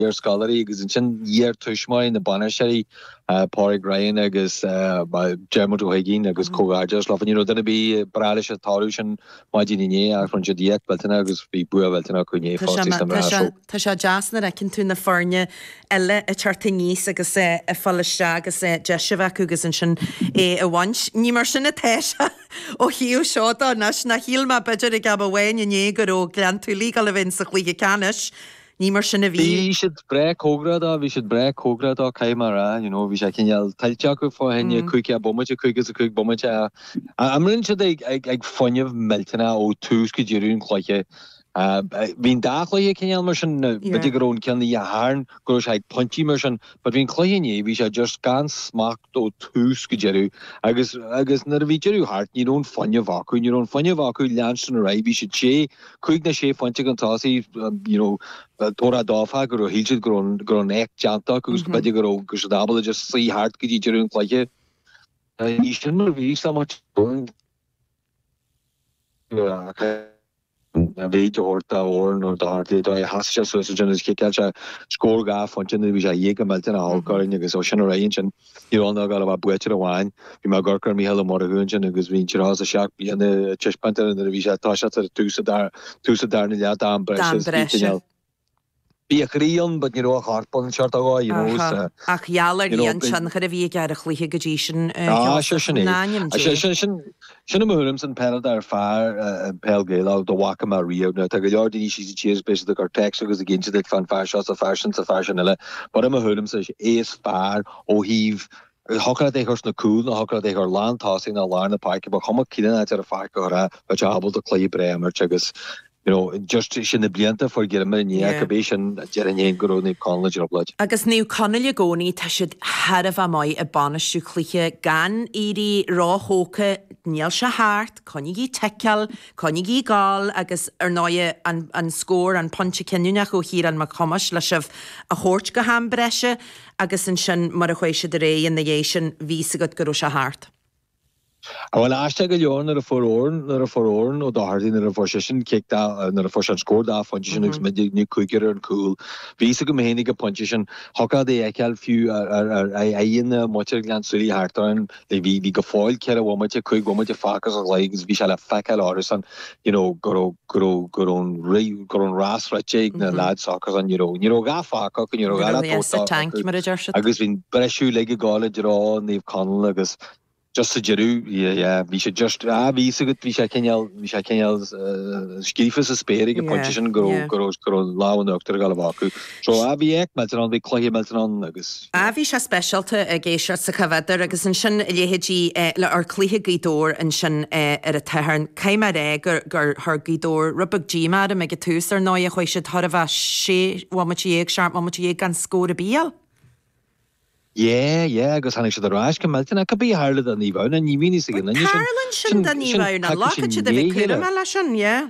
iar-scoláirí agus ansin iar-tuismitheoirí na bainisteoirí, Pádraig Ryan agus Dermot Ó hUiginn agus comhghairdeas leo. You know duine ar bith ag brath leis an toradh sin maidin inné ach rinne siad éacht mhillteanach agus bhí bua mhillteanach acu inné fosta sna mná. So. Tá sé deas nuair a fheiceann tú na foirne eile ag teacht aníos agus ag fáil isteach agus deis a bheith acu agus ansin é a bhaint. Ní mar sin atá sé ó thaobh seo de anois ná shíl mé b'fhéidir ag am amháin inné go raibh Gleann tSúilí ag gabháil a bhaint sa chluiche ceannais. Ní mar sin a bhí. Bhí siad breá cóngarach dó, bhí siad breá cóngarach dó, caithfidh mé a rá, you know, bhí sé cineál tuillte acu fá choinne caoga bomaite, cúig is caoga bomaite a imríonn siad ag fuinneamh millteanach ó tús go deireadh an chluiche. Bhí an dá chluiche cineál mar sin, na, Yeah. b'fhéidir go raibh an ceann Oíche Shathairn, go raibh sé ag pointí mar sin, but bhí an cluiche inné, bhí sé just gan smacht ó tús go deireadh agus, agus nuair a bhí deireadh thart, ní raibh an fuinneamh acu, ní raibh an fuinneamh acu leanstan ar aghaidh, bhí siad sé Cúig ná sé phointe chun tosaigh, you know, toradh dóbhtha go raibh, shíl siad go raibh, go raibh an éacht déanta acu agus go mb'fhéidir go raibh, go raibh siad ábalta just suí thart go dtí deireadh an chluiche. Ní sin mar a bhí sa mbaile sin. An mhéid a thabhairt dá fhoireann nó dá pháirtithe, dóigh a sheasaigh sé suas ansin agus chiceáil sé scór dhá phointe nuair a bhí sé ag éirí millteanach olc orainn agus ó sin ar aghaidh ansin, Ní raibh ann ach ag gabháil a bheith buaiteoir amháin. Bhí mé ag amharc ar Mhícheál Ó Murchú ansin agus bhí an tríocha is a seacht bliana ag taispeáint air nuair a bhí sé ag toiseacht ar dtús sa darna leath d'am breise is fiche inneall. Bhí a chroí ann but ní raibh a chorp ann, seo a rá, you know, is. Ach gheall ar an tionchar a bhí aige ar an chluiche go dtí sin, a Sheosaimh. Ná nimh Dé. Sin i mo thuairimse an peileadóir is fearr peil Gaelach dá bhfaca mé riamh. Now tá go leor daoine síos an tír is beidh siad ag cur text agus ag inse duit fán fear seo 's a fear sin 's a fear sin eile but i mo thuairimse is é is fearr ó thaobh thiocfadh leat é chur sna cúil ná thiocfadh leat é chur lán tosaigh ná lár na páirce ba chuma cén áit ar an pháirc a chur é bheadh sé ábalta cluiche breá a imirt agus You know, just sin na blianta forghéilleamair i ndiaidh Yeah. bís an déarfainn fhéin go raibh Naomh Conaill i dtrioblóid. Agus Naomh Conaill i gcónaí, tá siad thar a bheith maith i bainistiú cluiche, gan éirí róthógtha, níl sé thart, coinnigí ticeáil, coinnigí ag gabháil agus ar ndóighe an an scór, an pointe cinniúnach ó Chiarán Mac Thomáis le sibh a thabhairt go ham breise agus ansin mar a chuaigh siad ar aghaidh ina dhiaidh sin, bhí fhios agat go raibh sé thart. Bhuel aisteach go leor nuair a fuair Eoin, nuair a fuair Eoin Ó Dochartaigh, nuair a fuair seisean cic dá, nuair a fuair sé an scór dá phointe sin agus muidinne cúig ar gcúl, bhí fhios agam fhéin ag an phointe sin, thiocfadh leat é fheiceáil fiú ar aghaidheanna muintir Ghleann tSúilí thart orainn, bhí, bhí go fóill ceithre bhomaite, cúig bhomaite fágtha sa gcluiche agus bhí sé le feiceáil orthusan you know, go raibh, go raibh, go raibh an ri-, go raibh an rás rite ag na lads s'acusan, you know, ní raibh a dhath fágtha acu, ní raibh a dhath le tabhairt acu, agus bhí an breisiú uilig ag dul i dtreo Naomh Conaill agus just sa deireadh, yeah, bhí sé just, ah, bhí fhios agat, bhí sé cineál, bhí sé cineál scríofa sa spéir ag an bpointe sin go raibh, go raibh, go raibh lámh in uachtar ag gabháil a bheith acu. So ah bhí éacht millteanach ann, bhí cluiche millteanach ann agus. Ah bhí sé speisialta ag éisteacht sa Chaf Uidhir agus ansin a leithéidí le or cluiche Gaoth Dobhair ansin ar an tSathairn, caithfidh mé a rá gur gur chuir Gaoth Dobhair rud beag díomá orm ag an tús ar ndóigh ach chuaigh siad thar a bheith sé bhomaite dhéag, seacht mbomaite dhéag gan scór ar bith a fháil. Yeah, yeah agus tháinig siad ar ais go millteanach ach cá bith a tharla do Naomh Adhamhnáin, ní bhíonn a fhios ag aon Bhuel, duine sin. tarlaíonn sin do Naomh Adhamhnáin, caithfidh siad a bheith cúramach leis sin, yeah.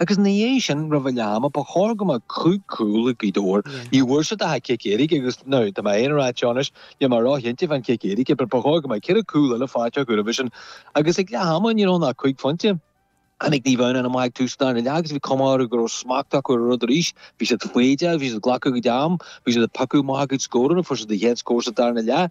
Agus ina dhiaidh sin, roimh leath ama, ba chóir go mbeadh cúig chúl ag Gaoth Dobhair. Ní bhfuair siad ach cic éirice agus, now, tá mé féin ag rá anseo anois, níl mé róchinnte fán chic éirice, but ba chóir go mbeadh ceithre chúl eile faighte acu roimhe sin. Agus ag leath ama, ní raibh ann ach cúig phointe. Tháinig Naomh Adhamhnáin amach ag tús an darna leath agus bhí cuma orthu go raibh smacht acu ar an rud arís. Bhí siad foighdeach, bhí siad ag glacadh a gcuid am, bhí siad ag piocadh amach a gcuid scóranna, fuair siad a gcéad scór sa darna leath,